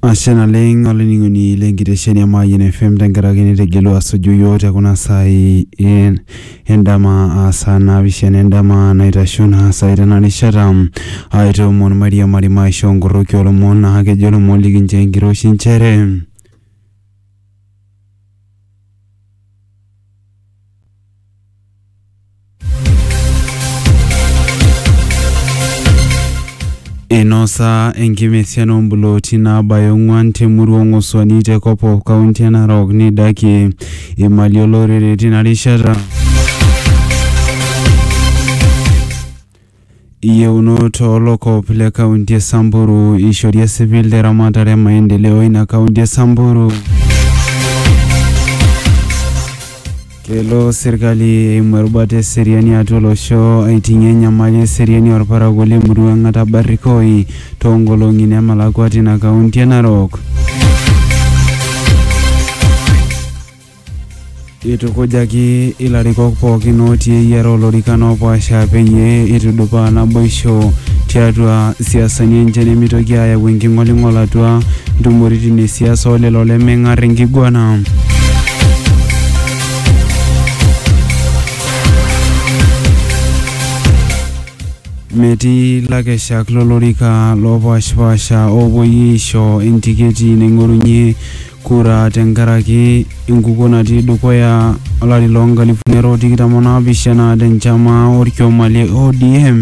Ashe naleng olainining'oni lenkitesheni e Mayian FM tenkaraki nitegelua asuju yiok te kuna saai en- endama aa saa naapishana endama naitasho naa saai tena rishata aitoomon mairiamari maishoo nkoroki oolomon naa kejo ilomon likinchoo enkiroshi nchere inosa enkimesian ombuloti nabaya ong'uan temurua ong'osuani te kopop kaunti e narok neidaki imali olorere tina rishata Iyieunot oo lokop le kaunti e Samburu eishori esipil te ramatare e maendeleo ina kaunti e Samburu. Kelo serkali eimu erubata e seriani atua olosho aiting'ie enyamali e seriani olparakuo le murua Ng'ata Barikoi too nkolong'i nemelakua tina kaunti e Narok. Eitukujaki ilarikok pookin ootii eyiara olorikan oopaasha peyie eitudupaa naboisho tiatua siasani enche nemeitoki aayau enking'oling'ol atua ntumoritin e siasa o lelo lemeng'ar enkiguana. Metii lakeshak lolorika loopaashipaasha oopuoi aisho entiketi naing'orunye kura tenkaraki enkukuo natii dukuya olari loo nkalifuni are o tikitam o naapishana tenchama olkioma le ODM.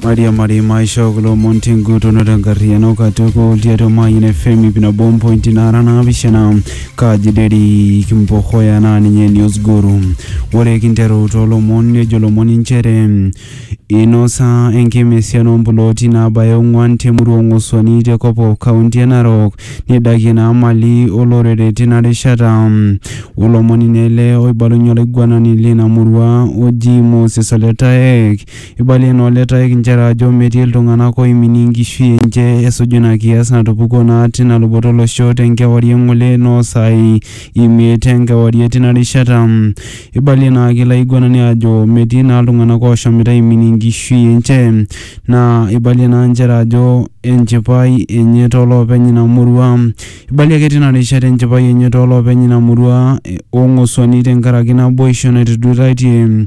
Maria Marima aishoo kulo omon tenguton o tenkarriyiano katukul tiatua Mayian FM ip nabo ompointi naara naapishana Kaji Derrick Mpokoya naa ninye news guru. Ore kinteru toolomon nejo lomon inchere inosa enkima esiana ompulooti naabaya ong'uan temurua Ong'osuani te Kopkop kaunti e Narok neidakie naa mali olorere tina rishata. Olomoni naa ele oibalunye olaiguanani leina murua oji Moses Oletaek Eibalie naa Ole Taek inchere ajo metii iltung'ana ooiminie enkishui enche esuju ina kias natupukuo naa tina luboto olosho te nkewarie ng'ole noo saai imiet e nkewarie tina rishata. Eibalie naa ake ilo aiguanani ajo metii naa iltung'ana ooshomoita aiminie enkishui enche naa eibalie naa inchere ajo enchipai enye too loopeny ina murua. Eibalie ake tina rishata enchipai enye too loopeny ina murua o ng'osuani tenkaraki naboisho naituduitaitie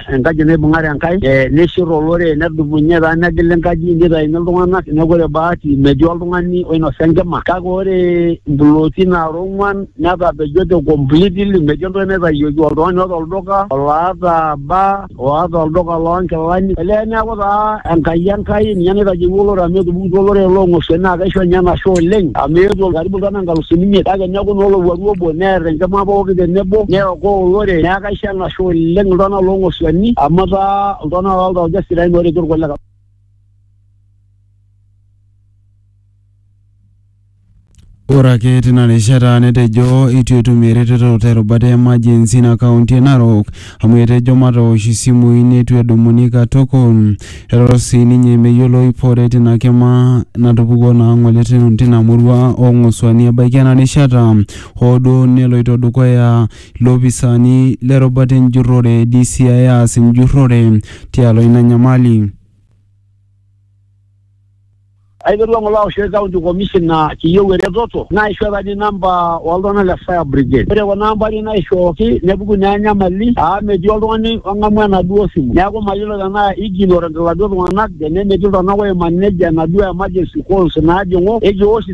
enkaji naibung'are Enkai eh, nishir olorere nedumunye taa negil enkaji nitaini iltung'anak neeku ore bahati metii oltung'ani oinosa enkima kake ore mpulooti naara ong'uan netapejote completely metii entoki naitayioki oltung'ani oota olduka oloata baa oata olduka loonkilani olee neeku taa Enkai Enkai ninye naitajeuo olorere amu etupukutuo olorere loong'osuai naa kaisho ninye enashe oleng amu eetuo karibu iltung'anak inkalusuni imiet kake neeku naa olowuaru obo neer enkima pooki tenebo neokoo olorere neeku kaisho enashe Etashe oleng iltung'anak loo ng'osuani amu etaa iltung'anak loo ltauja sidain ooretu irkulikae. Ore ake tina rishata netejo eitu etum eretoto te rubata e emergency ina kaunti e Narok amu etejo matoosh isimui neitu edumuni katukul. Etejo sii ninye meyiolo ip are tina kima natupukuo naa ng'ole tina murua oo ng'osuani ebaiki ena rishata hoo duo neloito dukuya Loopisaani le rubata enjurrore, DCI, aas enjurrore tialo ina nyamali. Aiterua ngole aoshoki county commissioner kiyieu eretoto naishoo apa ninye number oo ltunganak le fire brigade ore kuna ambari naishooki nepuku naa enyamali aa metii oltungani ongamu enaduo simu neeku mayiolo tenaa ignorant iladuo tunganak tene metii iltunganak oimanej enaduo emergency calls naajingu eji eosh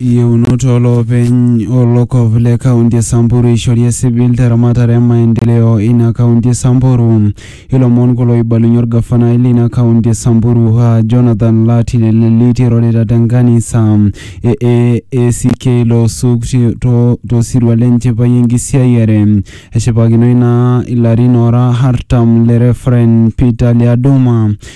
Yieunoto olopeny olokop le kaunti e Samburu eishori esipil teramatare e maendeleo ina kaunti e Samburu. Ilomon kulo oibalunye olgafanai leina kaunti e Samburu aa Jonathan Lati Leleliti eirorita te nkanisa e AACK Loosuk to sirua le nchipai enkisiayiare. Eshipakinoi naa ilarin oora artam le Referent Peter Lyaduma.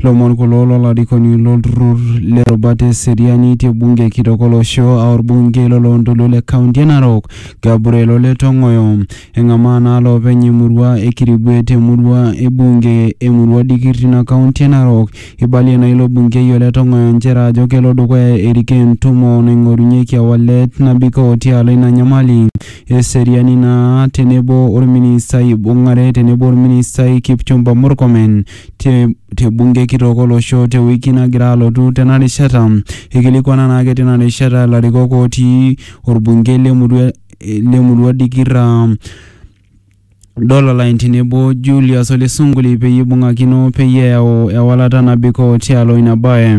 Ilomon kulo lolarikoni lolturrur le rubata e seriani te bunge kitok olosho aa orbungei lo loontoluo le county e Narok Gabriel Ole Tong'oyo. Eng'amaa naa loopeny e murua e Kirigwe te murua e bunge e murua Dikir tina county e Narok. Eibalie naa ilo bungei Ole Tong'oyo nchere ajo kelo dukuya erikoo entumo naing'orunyeki ewalet nabikoo tialo ina nyamali e seriani naa tenebo orministai oibung'are tenebo orministai Kipchumba Murkomen. te, te bunge kitok olosho te wiki nagira alotu tena rishata. Ekilikwana naake tina rishata ilarikok ootii orbungei le murua le murua Dikirra Dololine tenebo Julius Ole Sunguli peyie eibung'akino peyie eyau ewalata nabikoo tialo ina bae.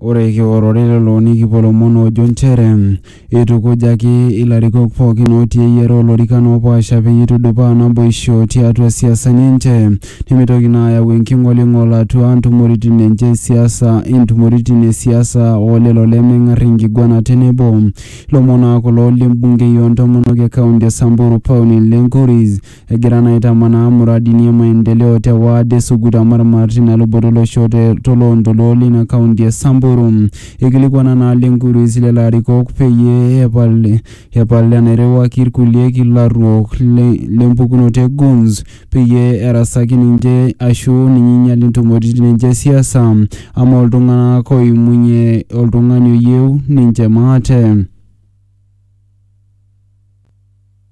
Ore kiworore lelo nikipuo lomon oojo nchere eitukujaki ilarikok pookin ootii eyiare olorikan oopaasha peyie eitudupaa naboisho tiatua siasani enche nemeitoki naa ayau enking'oling'ol atua ntumoritin enche e siasa, intumoritin e siasa o lelo lemeng'ar enkiguana tenebo. Ilomon naa kulo le mbungei o ntomonok e kaunti e Samburu Pauline Lenkuris. egira naa aitamanaa muradini e maendeleo te waad e Sugut Amarmar tina luboto olosho te toloontoluo leina kaunti e Samburu. Eikilikuana naa Lenkuruis lelo arikok peyie epal epal enairriwaki ilkulie kilaruok le le mpukunoto e Goons peyie erasaki ninche aashu ninye einyal intumoritin enche e siasa amaa oltung'anak oimunye oltung'ani oyieu ninche maate.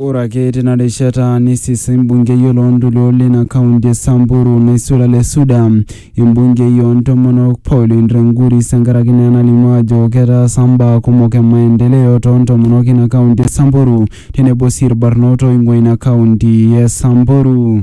Ore ake tina rishata neisisa embungei o loontoluo lina kaunti e Samburu Naisula Lesuda embungei oo ntomonok Pauline Renguri senkaraki naa enalimu ajo ketaasa mbaa kumok e maendeleo too ntomonok ina kaunti e Samburu tenebo sii ilbarnot ooing'ua ina kaunti e Samburu.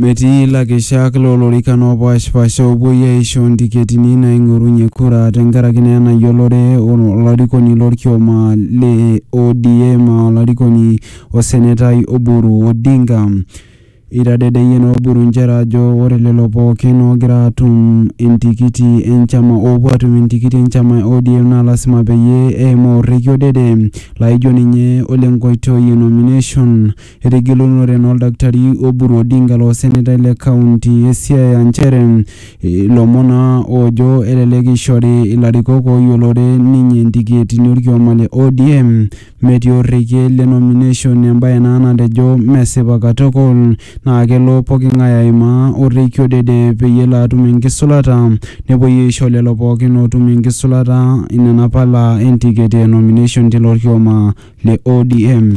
Metii lakeshak loo lorikan oopaashipaasha oopuoi aaisho ntiketini naaing'orunye kura tenkaraki naa ena yiolore olarikoni lorkioma le ODM aa olarikoni osenetai Oburu Odinga. Eitadedeyie naa Oburu nchere ajo ore lelo pookin oogira aatum entikiti enchama oopuo aatum entikiti enchama e ODM naa lasima peyie eimaa orrekie odede laaijo ninye ole nkoitoi e nomination Etejo egelunore naa oldakitari Oburu Odinga loo senetai le kaunti e Siaya nchere ilomon naa oojo elelek eishori ilarikok ooyiolore ninye intiketini olkioma le ODM metii orekie le nomination embae naa natejo mesipa katukul naa kelo poking'ae aimaa orekie odede peyie elo atum enkisulata nepuoi aisho lelo pookin ootum enkisulata inena pala entiketi e nomination tilo kioma le ODM.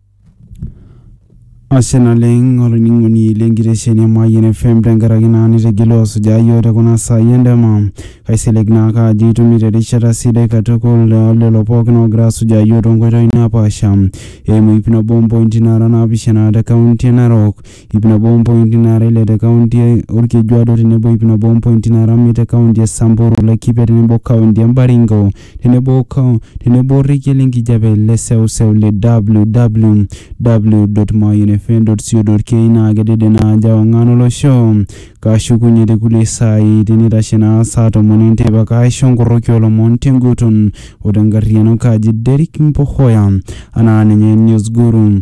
Ashe naleng olainining'oni le nkitesheni e Mayian FM tenkaraki naa nitegelu asujaa iyiook te kuna saai endama. Kaisilig naake ajo itumito erishata sidai katukul naa lelo pookin oogira asujaa iyiook toonkoitoi napaasha eimu iip nabo ompointi naara naapishana te kaunti e Narok. iip nabo ompointi naara ile te kaunti e Olkejuado tenebo iip nabo ompointi naara miet te kaunti e Samburu, Laikipia tenebo kaunti e Baringo tenebo tenebo orekia le nkijape le seuseu le www.mayianfm.co.ke naa kedede ina aji e ong'an o losho. Kashukunye te kulie saai teneitashe naa saa tomon e nteipa kaaisho nkoroki oo lomon te nguton o te nkarriyiano kaji Derrick Mpohoya anaa ninye Newsguru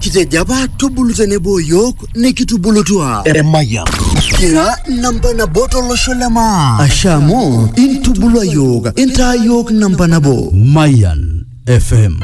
Kitejo apa tubulu tenebo yiok nikitubulutua. Emayian. Kira namba nabo tolosho le maa. Ashe amu intubulua yiok intaa yiok namba nabo. Mayan FM.